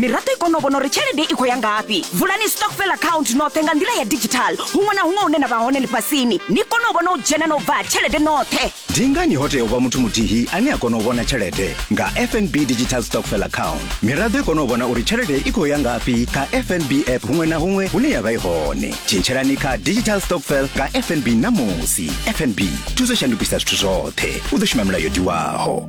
miraḓo i kone u vhona uri tshelede i khou ya ngafhi vulani stockfel account noṱhe nga nḓila ya digital huṅwe na huṅwe hune na vha hone ḽifhasini ni kone u vhona u dzhena na u bva tshelede noṱhe ndi ngani ho tea u vha muthu muthihi ane a kona u vhona tshelede nga fnb digital stockfel account miraḓo i kone u vhona uri tshelede i khou ya ngafhi kha fnb app huṅwe na huṅwe hune ya vha i hone tshintshelani kha digital stockfel nga fnb ṋamusi fnb thuso shandukisa zwithu zwoṱhe u ḓo shuma milayo diwaho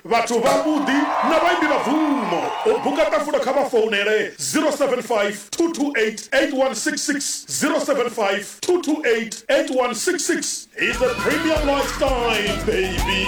Vhathu vhavhuḓi na vhaimbi vha bvumo. U buka ṱafulo kha vha founele 0752288166, 0752288166. He's a premium lifestyle baby.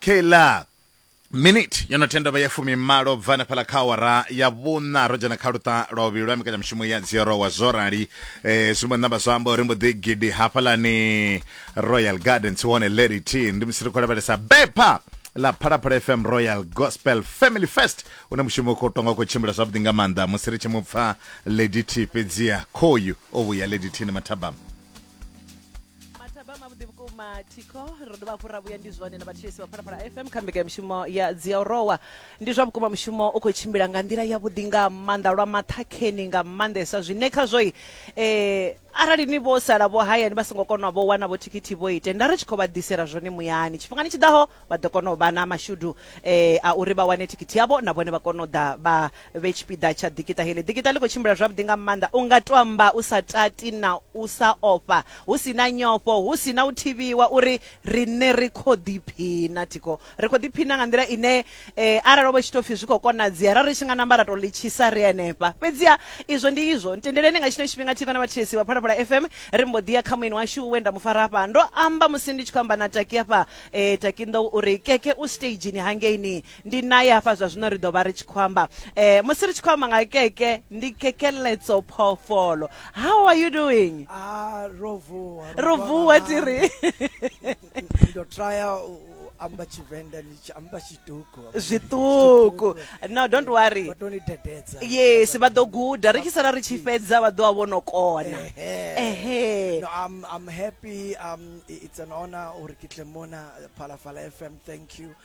keiḽa miniti yo no tenda vha ya fumimalo bva na fhala kha awara ya vhuna ro dzhena kha luṱa lwa vhuvhili lwa mbekanyamushumo ya dziorowa zwo rali eh, zwi mbo namba zwa amba uri mbo ḓi gidi hafhalani royal garden tshi hone lady t ndi musi ri khou lavhelesa bepha ḽa phalaphala fm royal gospel family fest une mushumo u khou tonga u khou tshimbila zwavhuḓi nga maanḓa musi ri tshi mu pfa lady t fhedziha khoyu o vhuya lady t ni mathabama mathaba mavhuḓi vhukuma thikho ro dovha hafhu ra vhuya ndi zwone na vhathetshelesi vha phalaphala fm kha mbekanyamushumo ya dziaorowa ndi zwa vhukuma mushumo u khou tshimbila nga nḓila yavhuḓi nga maanḓa lwa maṱhakheni nga maanḓesa zwine khazwoi eh, arali ni vho sala vho hayani vha songo kona vho wana vho thikhithi vho ite nda ri tshi khou vha ḓisela zwone muyani tshifhingani tshi ḓaho vha ḓo kona u vha na mashudu eh, a uri vha wane thikhithi yavho na vhone vha kona u ḓa vha vhe tshipiḓa tsha ḓikiṱa heḽi. Ḓikiṱa ḽi khou tshimbila zwavhuḓi nga maanḓa, u nga tou amba u sa tati na u sa ofha, hu si na nyofho, hu si na u thivhiwa uri riṋe ri khou ḓiphina. Thikho, ri khou ḓiphina nga nḓila ine arali ho vha hu tshi tou pfi zwi khou konadzea ra ri tshi nga namba ra tou ḽi tshisa ri henefha. Fhedziha izwo ndi izwo. Ntendeleni nga tshino tshifhinga thi vha na vhathetshelesi vha Phalaphala FM, ri mbo ḓi ya kha mueni washu we nda mu fara hafha. Ndo amba musi ndi tshi khou amba na Taki hafha, Taki Nḓou u ri, Keke u siteizhini hangeini. ndi naye hafha zwa zwino ri ḓo vha ri tshi khou amba eh, musi ri tshi khou amba nga keke ndi kekeletso phoofolo how are you doing ah, rovuwa rovuwa tiri ndo trya amba tshivenḓa ni tshi amba tshiṱuku zwiṱuku no don't worry vha tou ni dededza yes vha ḓo guda ri tshi sala ri tshi fhedza vha ḓo vha vho no kona ehe no i'm i'm happy um it's an honor uri ke tle mona phalafala fm thank you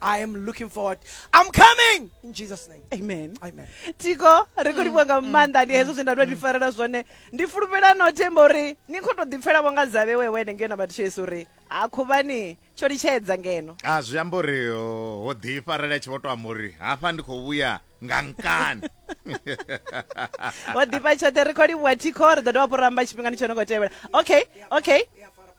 I am looking forward. I'm coming in Jesus name. Amen. Amen. Tiko ri khou livhuwa nga mm, maanḓa mm, ndi hezwo mm, zwe nda tou ḓifarela zwone ndi fulufhela no themba uri ni khou tou ḓipfela vho nga dzavhe wewe ene ngeno vhathu tshesu uri ha khuvhani tsho litshedza ngeno a ah, zwi amba uri ho ḓifarela tshi vho tou amba uri hafha ndi khou vhuya nga nkani ho ḓifha tshoṱhe ri khou livhuwa thikho ri ḓo dovha fho ramba tshifhingani tsho no khou tevhela okay okay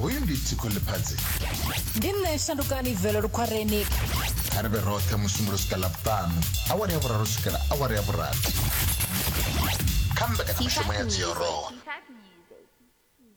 hoyu ndi tsiko ḽiphadzi ndi nṋe shandukani velo lukhwareni kha ri vhe roṱhe musumbulo swika ḽavhuṱanu awara ya vhuraru swikela awara ya vhurathi kha mbekanyamishumo ya dziorowa